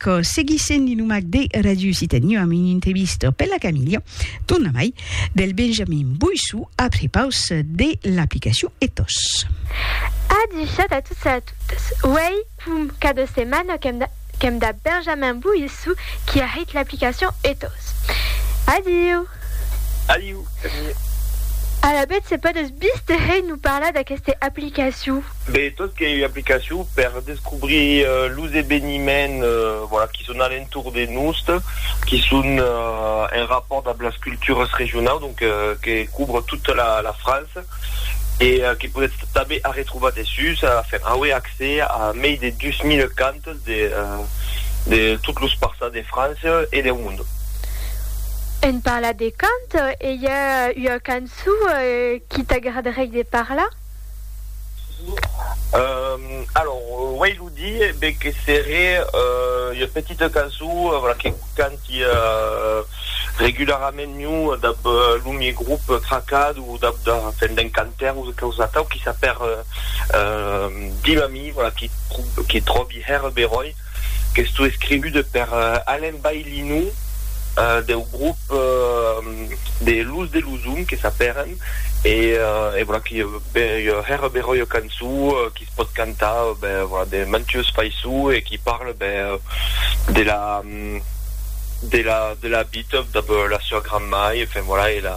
Quò seguissent li nomac de Radius i teniu amb un intevistò per la Camilha, tornamai, del Benjamin Boissou a prepaus de l'aplicacion Ethos. A dichat a tots e a totas, uèi fum cada setmana qu'èm dab Benjamin Boissou qui a hèit l'aplicacion Ethos. Adiu! Adiu, Camilha! Alavetz se podètz bis de hèit nous parlar d'aqueste aplicacion? Be tot qu'ei ua aplicacion per descobrir los eveniments voilà qui son a l'entorn de nost, qui son en rapport damb las cultures regionaus, donc que couvre tota la França e que podetz tanben arretrobar dessús a faire auer accès a mei de 2000 cantes de tot los parças de França e deu monde. En parlar de cant, ei ua cançon qui t'agradarei de parlar? Alors uèi lo di be que seré ua petita caso voilà que canti regularament miu dab lo mie grup Tracad o dab da fèn d'un cantaire o quausa atau qui s'apèr Dimami voilà qui tròbi hèr Beròi. qu'estó escrivude per Alain Baillinou deu grop de Los de Luzum que s'apèren e voilà qui hèra bèra ua cançó qui se pòt cantar de mantues faiçó e qui parle de la de la de la vita dab la sua gran-mai enfin voilà e la